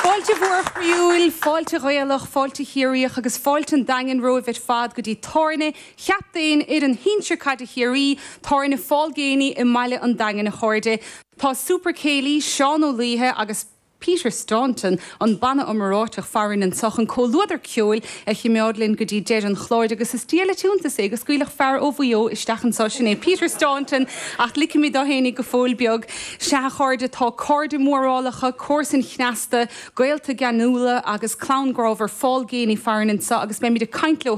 Fáilte mhór chroíúil, fáilte Ghaelach, fáilte Chiarraíoch agus fáilte an Daingin romhaibh ar fad go dtí tábhairne chaptaen fhoireann shinsir caide Chiarraí, Tábhairne Phaul Geaney i mbaile an Daingin a chairde. Tá Super Céilí Seán Ó Laoithe agus. Peter Staunton, an banna iomráiteach farainn anso chun comhluadar ceoil a chimeád linn go dtí deireadh an chláir agus is diail an t-iontas é gur scaoileadh fear ó Mhaigh Eo isteach anso, sin é Peter Staunton ach ligfimid dó fhéinig go fóill beag. Sea a chairde, tá cairde mórálacha, comharsain chneasta, gaolta geanúla agus clann grámhar Phaul Geaney farainn anso agus beimid ag caint leo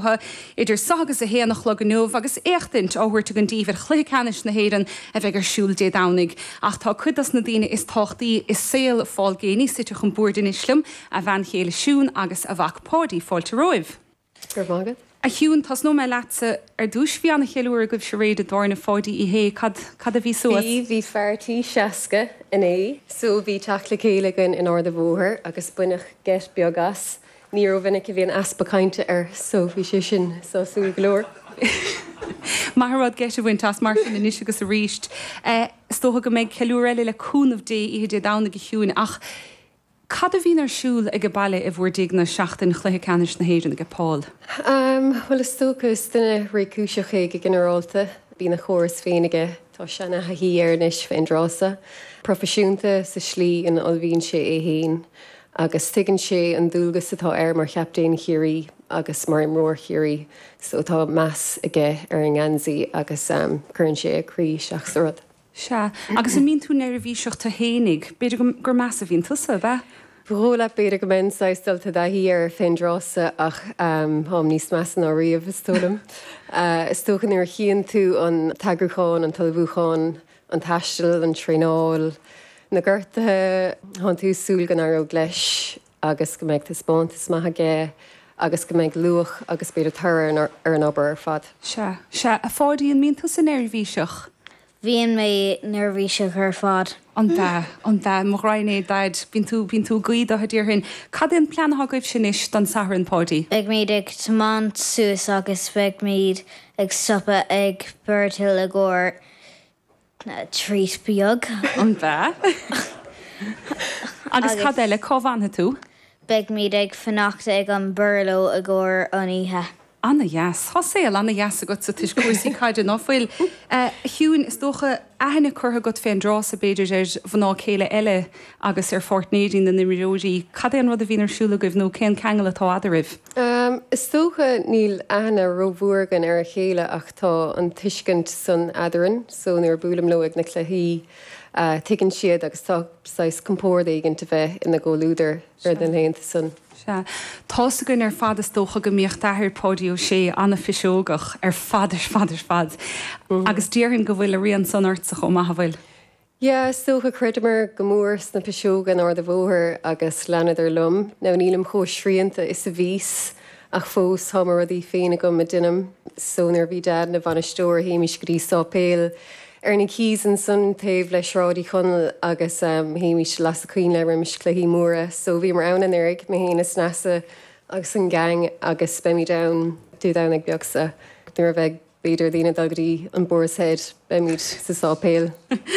idir seo agus a haon a chlog inniu agus éachtaint á thabhairt againn daoibh ar Chluiche Ceannais na hÉireann a bheidh ar siúl Dé Domhnaigh. Ach tá cuid dos na daoine is tábhachtaí i saol Phaul Geaney suite chun boird anois liom, a bhean chéile Siún agus a mhac Páidí. Fáilte romhaibh. Go raibh maith agat. A Shiún, tosnóidh mé leatsa ar dtús. Bhí an-cheiliúradh agaibhse aréir i dtábhairne Pháidí Uí Shé. Cad, cad a bhí suas? Bhí, bhí fear tí 60 inné so, bhí teacht le chéile againn in Ard an Bhóthair agus baineadh geit beag as. Ní ró-mhinic a bhíonn easpa cainte air so bhí sé sin sásúil go leor. Maith an rud geit a bhaint as, mar sin, anois agus arís. Is dócha go mbeidh ceiliúradh eile, le cúnamh Dé, oíche Dé Domhnaigh a Shiún. Ach cad a bhíonn ar siúl aige baile i bhur dtighne seachtain chluiche ceannais na hÉireann aige Paul? Bhuel, is dócha, is duine réchúiseach é go ginearálta. Bíonn a chóras féin aige Tá sé ina thaithí air anois fén dtráth so proifisiúnta sa slí ina ullmhaíonn sé é féin agus tuigeann sé an dualgas atá air mar chaptaen Chiarraí agus mar imreoir Chiarraí so tá meas aige ar an ngeansaí agus cuireann sé a chroí isteach sa rud. Sea, agus an mbíonn tú neirbhíseach tú fhéinig? B'fhéidir gur measa a bhíonn tusa, ab ea? Ba dhóigh leat, b'fhéidir go mbeinn saghas dulta i dtaithí air fén dtráth so ach táim níos measa ná riamh, is dóigh liom. Is dócha nuair a chíonn tú an t-eagrúchán, an t-ullmhúchán, an taisteal, an traenáil, na gortuithe, tá'n tú ag súil go n-éireoidh leis agus go mbeidh taispeántas maith aige agus go mbeidh luach agus b'fhéidir toradh ar an obair ar fad. Sea, sea, a Pháidí, an mbíonn tusa neirbhíseach? bhíonn mé neirbhíseach ar fad. An ea? An ea? Mo ghraidhin é Daid. Bíonn tú, bíonn tú ag guí do Dhaidí mar sin. Cad é an plean atá agaibhse anois don Satharn, Páidí? Beimid ag tiomáint suas agus beimid ag stopadh ag Birdhill i gcomhair treat beag. An ea? Agus cad eile? Cá bhfanfaidh tú? Beimid ag fanacht ag an Burlo i gcomhair an oíche. Ana-dheas. Tá saol ana-dheas agatsa toisc cúrsaí caide, ná fuil? A Shiúin, is dócha aithne curtha agat fén dtráth-sa, b'fhéidir, ar mhná céile eile agus ar pháirtnéirí na n-imreoirí. Cad é an rud a bhíonn ar siúl agaibh nó cén ceangal atá eadaraibh? Is dócha níl aithne rómhór againn ar a chéile ach tá an tuiscint san eadarainn so nuair a buailim leo ag na cluichí tuigeann siad agus tá saghas compord éigint a bheith ina gcomhluadar. ar na laethanta san. Sea. Tá's againn ar fad is dócha go mbíodh d'athair, Páidí Ó Sé, an-phiseogach ar fad ar fad ar fad. Agus déarfainn go bhfuil a rian san ortsa chomh maith, an bhfuil? Yeah, is dócha. Chreideamar go mór sna piseoga in Ard a' Bhóthair agus leanadar liom. Now nílim chomh srianta is a bhíos Ach fós, tá mo rudaí féin agam a deinim. So nuair a bhí Dad ina bhainisteoir, théimís go dtí sáipéal ar na Quays ansan taobh le Sráid Uí Chonaill agus théimís las a coinnle roimis cluichí móra. So bhíomar ann anuraidh, mé féin is Neasa agus an gang agus beimid ann Dé Domhnaigh beag seo nuair a bheidh. B'fhéidir daoine ag dul go dtí an Boar's Head, beimid sa sáipéal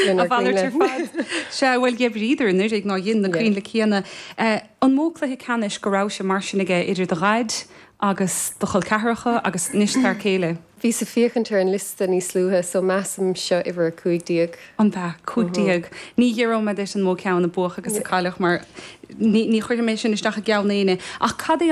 lenár gcoinnle. Sea, bhuel, d'oibríodar anuraidh nár dhein na coinnle céanna. An mó cluiche ceannais go rabhais-se mar sin aige idir do dhaid agus do chol ceathracha agus anois d'fhear céile? Bhíos ag féachaint ar an liosta níos luaithe so measaim seo uimhir a cúig déag. Ab ea, cúig déag. Ní fhiafróidh mé duit an mó ceann a buadh agus a cailleadh mar ní chuirfidh mé sin isteach i gceann éinne ach cad é